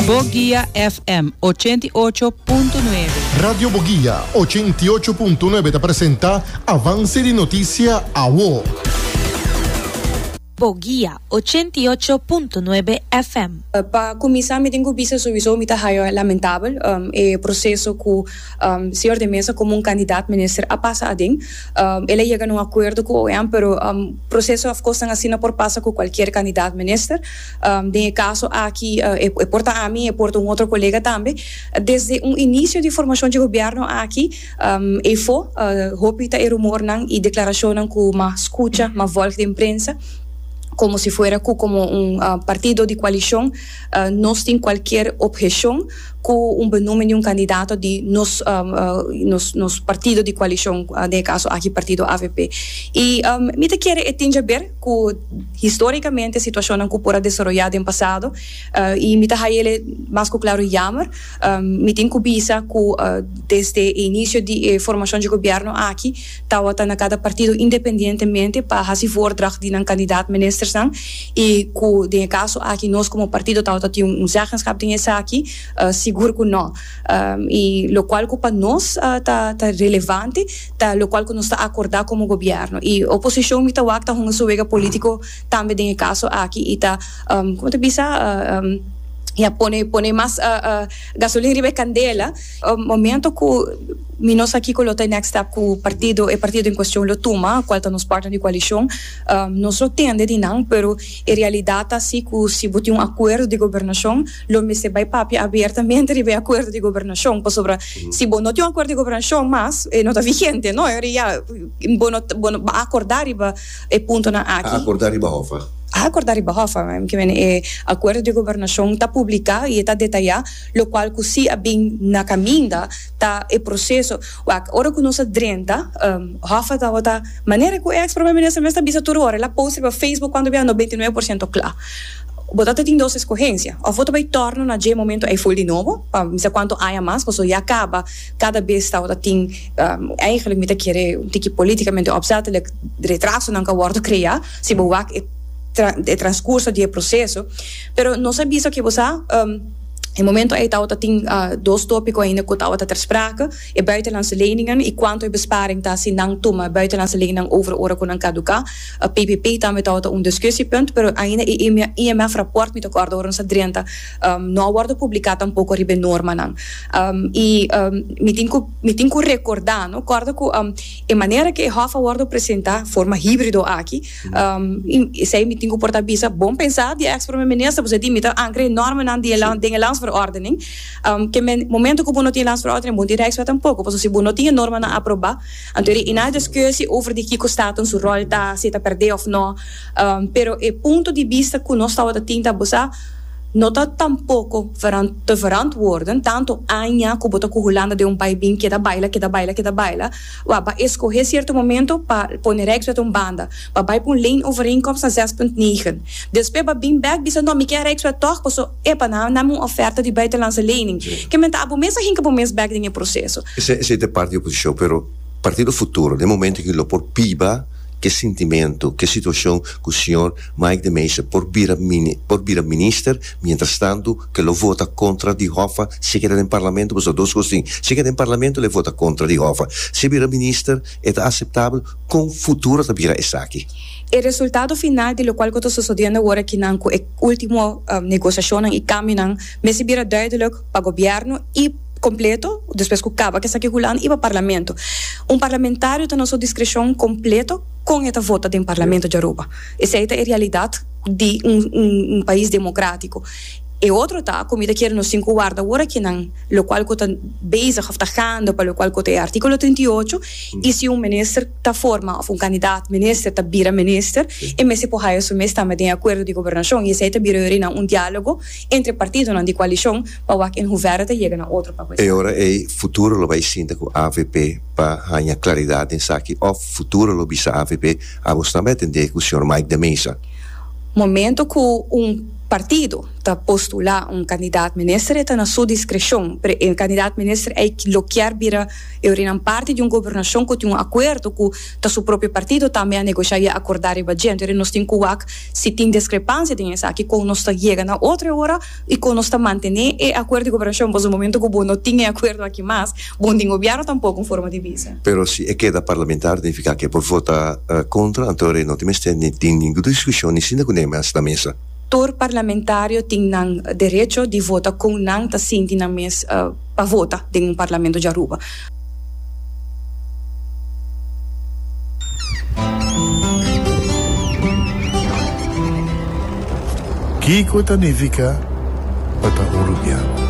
Boguia FM ochenta i ocho punto nuebe. Radio Boguia ochenta i ocho punto nuebe ta presenta Avance di Noticia Awo. Boguia ochenta i ocho punto nuebe FM. Pa cuminsa mi tin cu bisa sowiso mi ta haya lamentabel e proceso cu Señor de Meza como un candidat minister a pasa aden. El a yega na un acuerdo cu OM pero proceso afkosnan asina por pasa cu cualkier candidat minister. Den e kaso aki e por ta ami, e por ta un otro kolega tambe. Desde un inisio di formashon dje gobièrnu aki efo hopi ta e rumornan i deklarashonnan ku mas skucha, mas vòlg den prensa, komo si fuera ku komo un partido di koalishon nos tin kualkier opheshon ku un benúmen di un kandidato di nos nos partido di koalishon, den e kaso aki partido avp. I mi ta kere e tin dje ber. cu historicamente situacionnan cu por a desaroya den pasado y mi ta haya el e mas cu claro jammer. Mi tin cu bisa cu desde e inicio di e formacion dje gobierno aki tawata na cada partido independientemente pa haci voordracht di nan candidaat ministersnan y cu den e caso aki nos como partido tawata tin un zeggenschap den esaki, sigur cu no. Y locual cu pa nos ta relevante. ta locual cu nos ta acorda como gobierno y oposicion mi ta wak ta hunga su wega politico tambe den e caso aki y ta como ta bisa ya pone pone mas gasolin riba e candela momento cu mi no sa kico lo ta e next step cu partido e partido en cuestion lo tuma cual ta nos partner di coalicion nos lo tende di nan pero e realidad ta si cu si bo tin un acuerdo di gobernacion Lo mester bai papia abertamente riba e acuerdo di gobernacion, pasobra si bo no tin un acuerdo di gobernacion mas, e no ta vigente, no? Ora ya bo no, bo no a acorda riba e puntonan aki. A acorda riba hof, a? A acorda riba hof, a? Bai meken e acuerdo di gobernacion ta publica y e ta detaya locual cu si a bin na caminda ta e proceso. Wak, ora cu nos a drenta, hof a tabata, manera cu e ex Prome Minister mes ta bisa tur ora, el a post riba Facebook cuando bia no veintinuebe por ciento cla. Bo ta ta tin dos escogencia, of bo ta bay torna na dje momento ey full di nobo, pa mi sa cuanto aña mas, pasobra ya caba, cada bes ta word a tin, eigenlijk mi ta kere un tiki politicamente opzettelijk, retrasonan ta word crea, si bo wak e e transcurso di e proceso, pero nos a bisa ke bo sa, e momento ey ta word a tin dos topico ainda cu ta word a ter sprake, e buitenlandse leningen y cuanto e besparing ta si nan tuma buitenlandse lening over ora cu nan caduca. PPP tambe tabata un diskusiepunt, pero ainda e IMF raport, mi ta kòrda ora nos a drenta, no a wòrdu publiká tampoko riba e normanan. I mi tin ku mi tin ku rekordá, no, kòrda ku e manera ku e hòf a wòrdu presentá, forma híbrido aki, esei mi tin ku por ta bisa bon pensá di e eks Prome Minister, bo sa di mi ta ankra e normanan di e land den e Landsverordening, ke men momento ku bo no tin e Landsverordening bo no tin Rijkswet tampoko, pasobra si bo no tin e normanan aprobá. Anto e riina diskusi over di kiko staton su ròl ta, si e ta pèrdè òf nò. Pero e punto di bista ku nos tabata tin ta bosa no ta tampoko te verantwòrden tantu aña ku bo ta ku Hulanda den un bai bin keda baila, keda baila, keda baila. Wak, bo a eskohé sierto momento pa pone Rijkswet un banda. Bo a bai pa un leenovereenkomst na zes punt negen. Despues bo a bin bèk bisa, nò mi ke a Rijkswet tòg paso, Epa, nan nam un oferta di buitenlandse lening. Ke men ta abo mes ahinka bo mes bek den e proseso. Esei ta e parti di oposishon, pero Partido Futuro den e momento aki lo por biba ke sintimentu, ke situashon ku señor Mike de Meza por bira por bira minister, mientras tantu ke lo vota kontra di Hoffa si e keda den Parlamento pasobra dos kos tin, si e keda den Parlamento lo e vota kontra di Hoffa, si e bira minister e ta aseptabel, kon Futuro ta bira esaki? E resultado final di lokual ku ta sosodiendo awor aki nan ku e. Ultimo negosiashonnan i kambionan mester bira duidelik pa gobièrnu i kompleto despues ku kaba esaki hulan i pa parlamento. Un parlamentario ta na su diskreshon kompleto kon e ta vota den parlamento di Aruba. Esei ta e realidat di un pais demokratiko. E otro ta ku mi ta kere nos tin ku warda wor akinan lokual ku ta bezig òf ta gaande pa lokual ku ta e artikulo trinta i ocho i si un minister, ta forma of un candidaat minister ta bira minister e mester por haya su mes tambe den e acuerdo di gobernacion y esey ta bira yorinan un dialogo entre partidonan di coalicion pa wak en hoeverre ta yega na otro papel. E ora ey futuro lo bay sinta cu avp pa haya claridad den esaki of futuro lo bisa avp amos tambe a tende cu señor Mike de Meza. Momento cu un partido ta postula un candidaat minister e ta na su discrecion pero e candidaat minister ey lo kier bira E orinan parti di un gobernashon ku tin un akuerdo ku ta su propio partido tambe a negoshá i a akordá riba dje. Anto nos tin ku wak si tin deskrepansia den esaki kon nos ta yega na otro e ora i kon nos ta mantené e akuerdo di gobernashon. Pasobra momentu ku bo no tin e akuerdo aki mas, bo no tin gobièrnu tampok, un forma di bisa. Pero si e keda parlamentario nifiká ku e por votá kontra, anto no tin mester ni tin ningu diskushon ni sinda ku neme a sta mesa. Tur parlamentario tin nan derecho di vota kon nan ta sinti nan mes pa vota den un parlamento di Aruba. Kiko ta nifiká pa ta Urubiano?